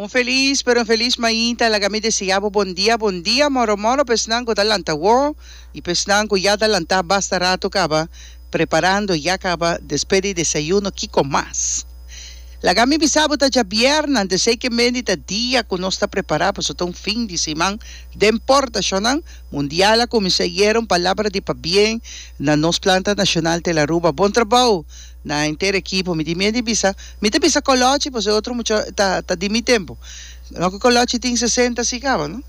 Un felis pero infelis mainta laga mi deseá bo bon dia bon dia moro moro pa esnan ku ta lanta wó i pa esnan ku ya ta lantá basta ratu kaba preparando ya kaba despe di desayuno kiko mas laga mi bisa bo ta dja bièrnè ante sei ke mendi ta dia ku nos ta prepará paso ta un fin di siman den portashonnan mundial a kuminsá yera un palabra di pabien na nos planta nashonal tel Aruba bon trabou. Na henter ekipo mi tin miedu di bisa, mi ta bisa Kolochi pasobra e otro mucha ta ta di mi tempu. No ku Kolochi tin sesenta si kaba no.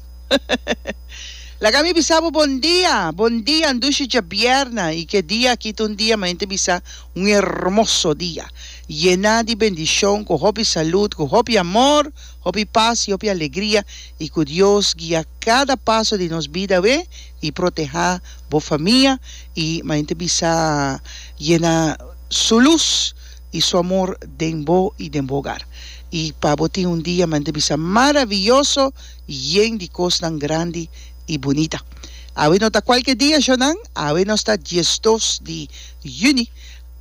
Laga mi bisa bo bon dia, bon dia ndushi djabièrna i ke dia aki ta un dia manente bisa un hermoso dia, yená di bendishon ku hopi salud, ku hopi amor, hopi pas i hopi alegria i ku Dios guia kada paso di nos bidae. y proteha bo famia y ma hende bisa yena su luz y su amor den bo y den bo hogar y pa bo tin un dia ma hende bisa maraviyoso yen di cosnan grandi y bunita awe no ta cualkier dia shonan awe nos ta diesdos di Juni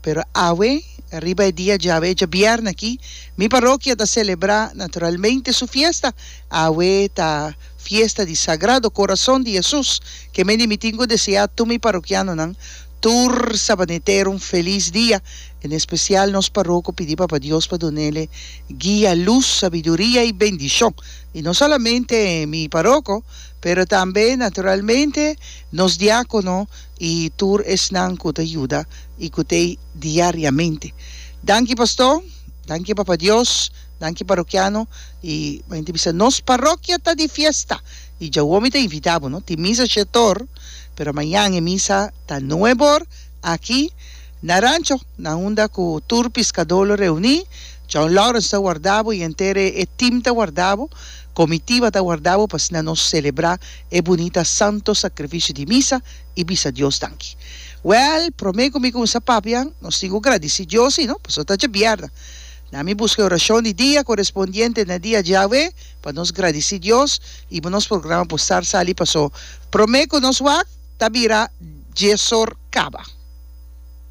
pero awe riba e dia djawe e djabièrna aki mi parokia ta celebra naturalmente su fiesta awe ta Fiesta di Sagrado Corazon di Jesus, ke mende mitin ku deseá tur mi parokianonan tur sabanetero un felis dia, en espesial nos paroko pidi Papa Dios pa dunele guia, lus, sabiduria i bendishon, i no solamente mi paroko pero tambe naturalmente nos diákono i tur esnan ku ta yuda i ku t'ei diariamente. Danki Pastó, danki Papa Dios. Danki parokiano y mayor ta bisa nos parokia ta di fiesta y djawomi ta invita bo no tin misa shetor pero mayan e misa ta nuebe or aki na rancho na unda cu tur piscador lo reuni John Lawrence ta warda bo y enter e team ta warda bo comitiva ta warda bo pa asina nos celebra e bunita santo sacrificio di misa y bisa Dios danki well prome cu mi cuminsa papia nos tin cu gradici Dios y no pasobra ta dje bierna Na mi buska e orashon di dia korespondiente na dia djawe pa nos gradici Dios y pa nos programa por star sali paso prome cu nos wak ta bira djezor caba.